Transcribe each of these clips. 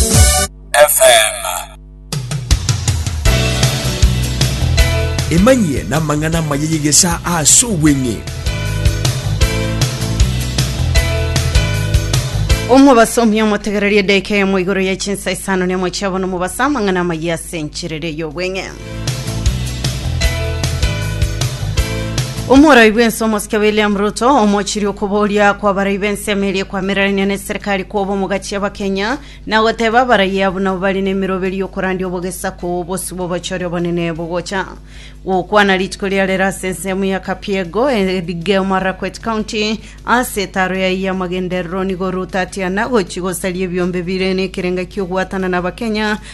FM. emanyie n'amang'ana amaya y'egesaa ase obweng'e omobasomi omotegereria edeka emo igoro ya chinsa isano nemo chiabono mobasa amang'ana amayia ase enchiriri y'obweng'e Omoroi bw'ense omosike William Ruto omochirie okoboria kwabarai b'ense ime eria ekwamiranania neserikari koba omogachi abakenya na goteba abarai abwo nabo bare nemiroberi yokorandia obogesaku oo bosio bw'obochori obonene bogocha gokwana rituko riare rero ase ensemo ya Kapiego Elgeyo Marakwet County ase etaro yaye y'amagenderero nigo Ruto atiana gochi gosaria ebiombe bire nekerenga ki'ogwatana na abakenya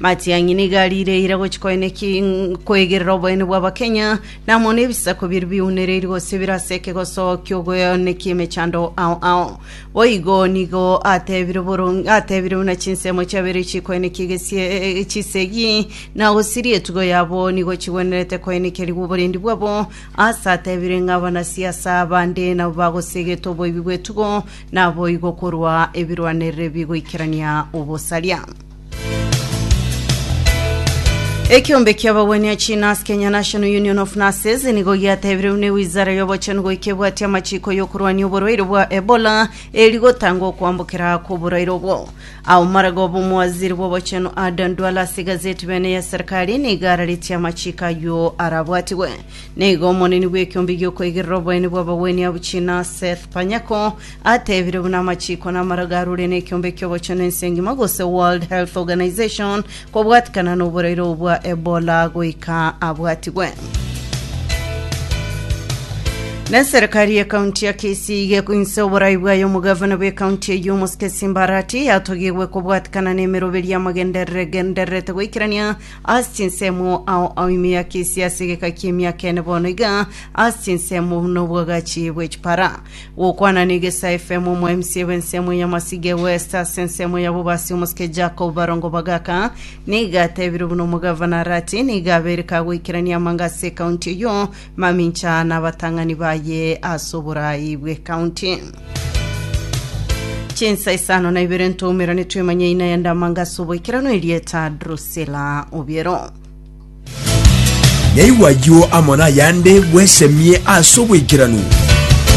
Matiang'i nigo ariireire gochia koeneki- koegerera oboene bw'Abakenya, na amo nebisaku biria biunereiri gose bire ase ekegoso ki'ogoenekia emechando ao ao. Boigo nigo atebire boron- atebire buna chinsemo chiabeire chikoenekia egesie- chisegi, na gosiria etugo yabo nigo chigwenerete koenekerigwa oborendi bwabo, aase atebire ng'a abanasiasa bande nabo bagosegete oboibi bw'etugo, naboigo korwa ebirwanerero ebigoikerania obosaria. Ekeombe ki'abagwenia chiNurse, Kenya National Union of Nurses, nigo giatebireirwe ne Wizara y'Obochenu goika ebwatia amachiko y'okorwania oborwaire bwa Ebola eri gotanga okwambokera kw'oborwaire obwo. Aomaraga obe omowaziri bw'obochenu Adan Duale ase egazeti Bene ya Serikali nigo araretie amachiko ayio arabwatigwe. Nigo omoneni bw'ekeombe gi'okoigerera oboene bw'abagwenia abwo chiNurse Seth Panyako Atebire buna amachiko namaro garure nekiombe kiogochenu ense engima gose World Health Organization kobwatikana noboraire obo bwa Ebola goika abwatigwe. Na serikari ye kaunti ya Kisii iga egoinse oborai bwayo omogavana bwe kaunti eyio omosike Simba Arati yatogigwe kobwatikana nemeroberio y'amagenderere gendererete goikerania ase chinsemo ao ao ime ya Kisii ase egeka ki'emiaka ene bono iga ase chinsemo buna obwagachi bwe chipara. Gokwana n'egesa FM omwaimsie bw'ensemo ya Masige West ase ensemo ya Bobasi omosike Jacob Barongo Bagaka niga atebirwe buna omogavana Arati niga abere kagoikerania amanga ase ekaunti eyio mamincha na abatang'ani baye ase oborai bw'ekaunti. Chinsa isano na ibere ntoumera nitwemanye ina yende amanga ase oboikeranu erieta Drusilla Obiero. Naigwa ayio amo nayande bwesemie ase oboikeranu.